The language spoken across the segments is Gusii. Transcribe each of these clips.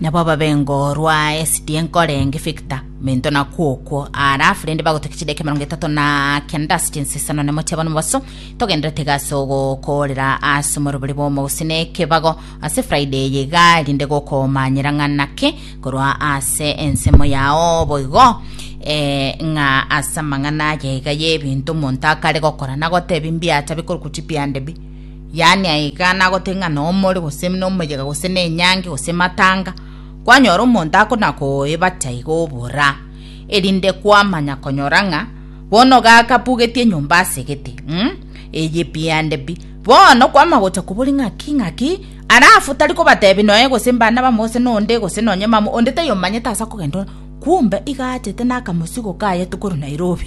Nabo ababengo rwa esidi enkore nge figita mento na kwokwo arafu rende bagotokia chideka emerongo etato na kenda ase chinsisano na motiaba nomobaso togenderete gase ogokorera ase omorobori bw'omogusii na ekebago ase friday eye iga rinde gokomanyera ng'a naki korwa ase ensemo yao boigo eh, ng'a ase amang'ana aye iga y'ebinto omonto akare gokora na gotebi mbiacha bikorokwa chibiande bi yaani aiga nagote ng'a nomore, gose nomoyega, gose nenyangi, gose matanga, kwanyora omonto akonakoebati aiga obora, erinde kwamanya konyora ng'a bono gakabugetie enyomba asegete mm? eye pi ande pi bono kwama gocha kobori ng'aki ng'aki arafu tari kobatebi noe gose mbana bamo gose nonde gose nonye mama onde tayomanyete asa kogenda kumbe iga achete nakamosigo kaye tokorwa nairobi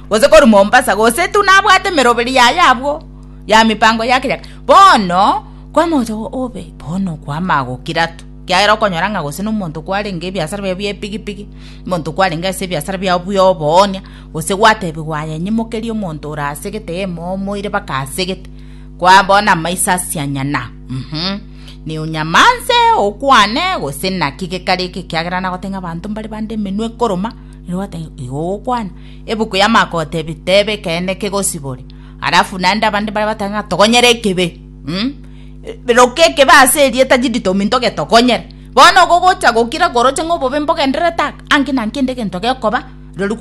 gose korwa Mombasa, gose tu nabwate emeroberi yaye abwo ya mipango ya keyaga. Bono kwamocha obe bono kwama gokira tu kiagera okonyora ng'a gose nomonto kwarenge ebiasara bia bia epigipigi monto kwarenge ase ebiasara bia bia oboonia gose gwatebigwa aya nyimokeri omonto ora asegete emo omoire baka asegete kwa bona maiso asianyana mm -hmm. ni onyamanse okwane gose naki gekare eke kiagera nagotenga abanto mbare bande emenwe ekoroma igo ogokwana Ebuku ya Marko gotebi tebe ekeene kegosibore. Alafu naende abande baria batang'e ng'a togonyere ekebe. Roka ekebe ase erieta jidito ominto getogonyere. Bono ogo gocha gokira koroche ng'a obobe mbogendererete aka, anki na nkende egento gekoba, rirorio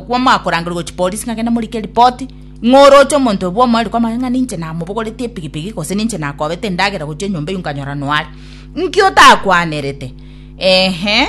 kwamoa korangereria gochia polisi ng'a gende morike ripoti ng'a oroche omonto oyo bw'omoerio kwamanye ng'a ninche namobogoretie epigipigi gose ninche nakobete endagera gochia enyomba eyio nkanyora noare. Nki otakwanerete? Eeh.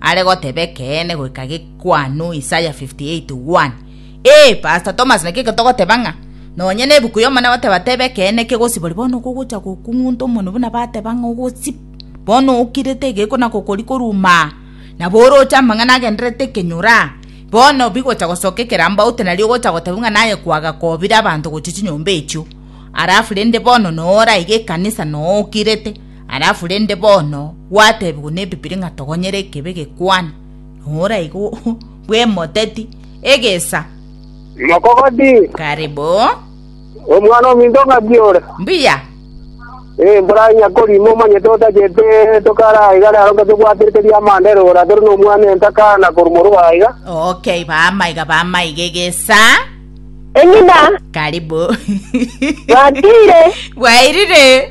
are goteba ekeene goika gekwanu Isaya 58:1. Ee, Pastor Thomas naki getogoteba ng'a nonye nebuku y'Omone goteba teba ekeene kegosibori bono kogocha gokung'unta omonwe buna bateba ng'a ogosib bono okirete egeko na gokori koruma nabo oroche amang'ana agendererete ekenyora bono bigocha gosoka ekerambaute nario ogocha goteba ng'a naye kwagakobire abanto gochia chinyomba echio arafu rende bono noora iga ekanisa nookirete Alafu rende bono gwatebigwa nebibiri ng'a togonyere ekebe gekwane, nora igo bwemoteti egesa. Mokogoti. Karibu. Omwana ominto ng'aki ore? Mbuya. Eh, mborai nyakorimo omanyete otachete tokara igare aro ng'aki obwaterete riamanda ere ora tore nomwana entakana korumoro aiga. Okay, bamaiga bamaiga egesa. Eng'ina. Karibu. Bwatire. Bwairire.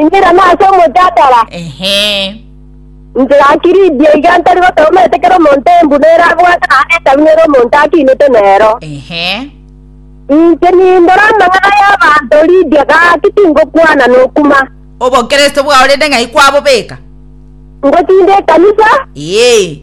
Inchera nase omochatara. Ehe. Inchera akiridia iga ntari gotogomerete kera omonto embu nere abwate naende etabu nere omonto akinete nero. Ehe. Inche nindore amang'ana y'abanto Lidia gaki tingokwana nokuma. Obokristo bwao rende ng'ai kwabobeka? Ngochinde ekanisa. Ee.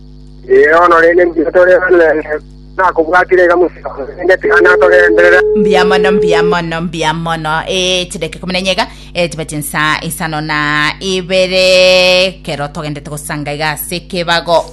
Ee, bono rende mbwire tore abanene, nakobwatire iga mosio, rende tiga natogenderere. mbuya mono mbuya mono mbuya mono e chideke kumi na nyega e tiba chinsa isano na ibere kero togendete gosanga iga ase kebago